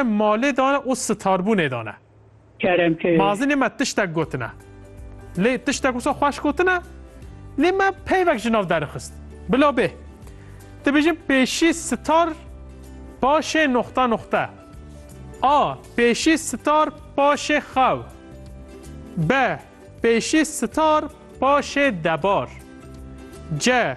malê dane û starbûnê dane. Kerem ke. Mazinê me tiştek gotine. Lê tiştek wisa xweş gotine. Lê me peyvek ji nav derixist. Bila bê. Dibêjin pêşî star paşê noxta noxta. A. Pêşî star paşê xew. B. Pêşî star paşê debar. C.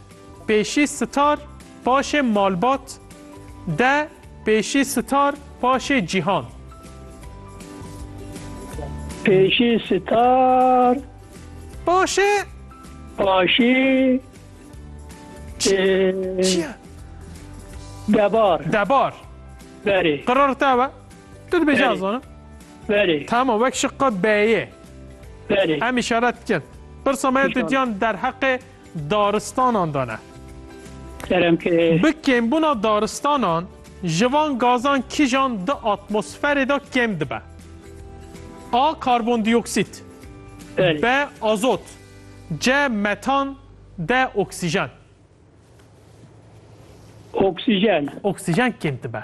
Pêşî Star paşê malbat de Pêşî Star paşê cîhan. Pêşî Star paşê paşî Çiye? Debar. Debar. Berê. Qırar te be. Tu dibêje Berê. azanım. Berê. Tamam vek şıkka B'ye. Berê. Em işaret dikin. Birsa me tu diyan derheqê daristanan de ne. Bi kêmbûna daristanan ji van gazan kîjan di atmosferê de kêm dibe. A karbondîoksît, B azot, C metan, D oksîjen. Oksîjen. Oksîjen kêm dibe.